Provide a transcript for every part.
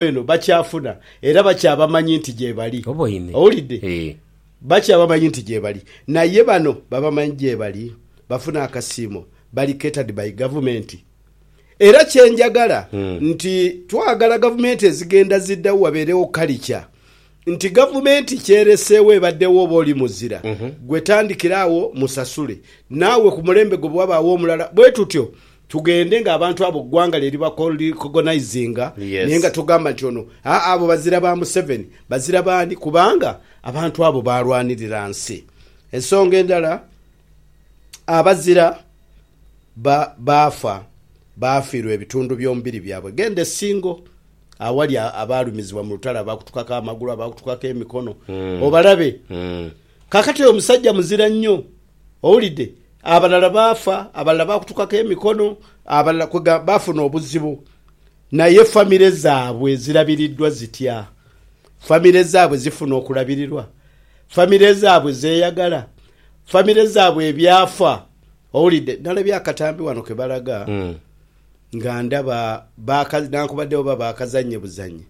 eno bakyafuna era bakyabamanyi nti gyebali. Oboine? Owulidde? Eeh. Bakyabamanyi nti gyebali. Naye bano babamanyi gyebali? Bafuna akasiimo. Bali catered by gavumenti. Era kyenjagala nti twagala gavumenti ezigenda ziddawo wabeerewo kalica nti gavumenti kyereseewo ebaddewo oba oli muzira gwe tandikira awo musasule naawe ku mulembe gwo bwewabaawo omulala bwetutyo Tugende nga abantu abo gwanga lye liba cogonizinga naye nga togamba nti ono aa abo bazira ba Museveni bazira baani kubanga abantu abo baalwanirira nsi. Ensonga endala abazira ba baafa baafiirwa ebitundu by'omubiri byabwe genda e Singo awali abaalumizibwa mu lutalo abaakutukako amagulu abaakutukako emikono obalabe. Kaakati oyo musajja muzira nnyo, owulidde, abalala baafa, abalala baakutukaku emikono, abalala kwega, baafuna obuzibu. Naye famire zaabwe zirabiriddwa zitya? Famire zaabwe zifuna okulabirirwa? Famire zaabwe zeeyagala? Famire zaabwe ebyafa? Owulidde, nnalabye akatambi wano ke balaga, nga ndaba baaka, newankubadde oba baakazannye buzannye,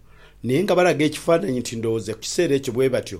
naye nga balaga ekifaananyi nti ndowooza ku kiseera ekyo bwe batyo.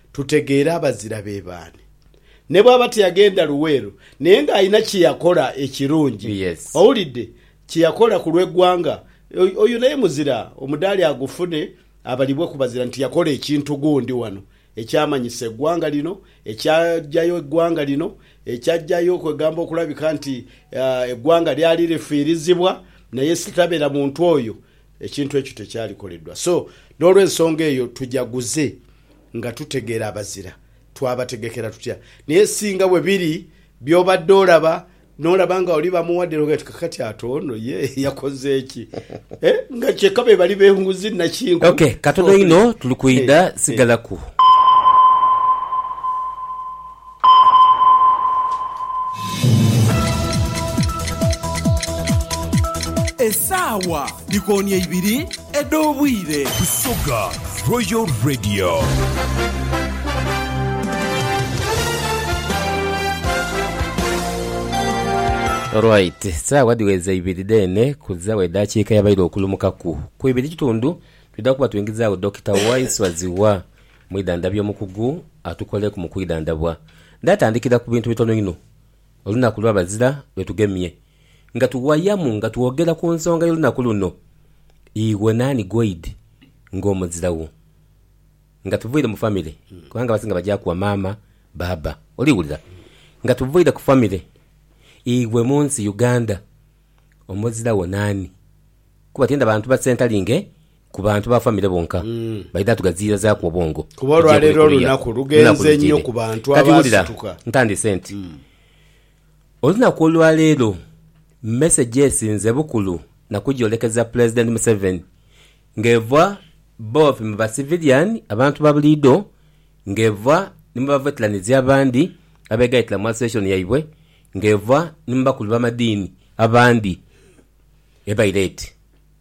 Tutegeere abazira be baani. Ne bw'aba tiyagenda Luweero, naye ng'alina kye yakola ekirungi. Yes. Owulidde? Kye yakola ku lw'eggwanga. Oyo, oyo naye muzira, omudaali agufune, abalibwe ku bazira nti yakola ekintu gundi wano ekyamanyisa eggwanga lino, ekyaggyayo eggwanga lino, ekyaggyayo, kwegamba okulabika nti, ah, eggwanga lyali lifiirizibwa, naye sitabeera muntu oyo, ekintu ekyo tekyalikoleddwa. So, n'olw'ensonga eyo tujaguze Nga tutegeera abazira, twabategekera tutya? Naye singa bwe biri by'obadde olaba, n'olaba nga oli bamuwa dira, oghee ti kakati ate ono ye yakoze ki? Eh, nga kyeka be bali benguzi nakinku. Ok, katono inho tuli kwidha, sigalaku. Esaawa dhikooni eibiri edh'obwire. Busoga Royal Radio. Alright, saawa dhiweza ibiri dheene kuzawo edhakiika yabaire okulumukaku ku ibiri kitundu, twidha kuba twingizaawo Dokita Waiswa Zziwa Mwidhandhabye omukugu atukoleeku mu kwidhandhabwa. Ndatandikira ku bintu bitono inho olunaku lwa bazira lwe tugemye. Nga tuwayamu nga twogera ku nsonga y'olunaku luno, Iwe naani ghoidhi ng'omuzira wo? Nga tuviire mu famire, kubanga abasinga bagyaku wa maama, baaba. Oli wulira? Nga tuviire ku famire, iwe mu nsi Uganda omuzira wo naani? Kuba tienda bantu ba Ssentalinge Ku bantu ba famire bonka baidha tugaziirazaaku obwongo. Kuba olwaleero olunaku lughenze inho ku bantu abaasituka. Kati wulira, ntandiise nti, Olunaku olwaleero mesegi esinze bukulu na kugyolekeza Pulezidenti Museveni ng'eva bobi mu ba siviliyani, abantu ba buliidho, ng'eva ni mu baveteranizi abandi abeegaitira mu asosiyeshoni yaibwe, ng'eva ni mu bakulu b'amadiini abandi. Ebaire eti.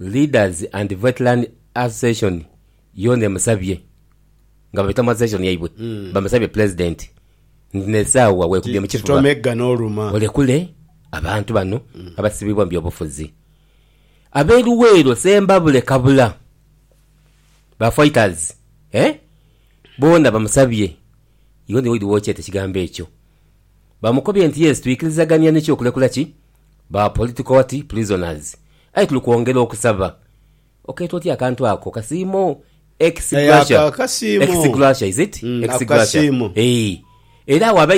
Leaders and Veteran Association yoona emusabye nga baita mu association yaibwe bamusabye Pulezidenti nti n'esaawa weekubye mu kifuba olekule abantu bano abasibibwa mu byobufuzi. Ab'e Luweero, Sembabule, Kabula ba fighters boona bamusabye yoona Lloyd Wokyete ekigambo ekyo bamukobye nti yes twikirizagania nikyo okulekula ki? Ba political what prisoners aye tuli kwongera okusaba okeeta otya akantu ako kasiimo ex gratia ex gratia is it ex gratia eeh era agho abaidha.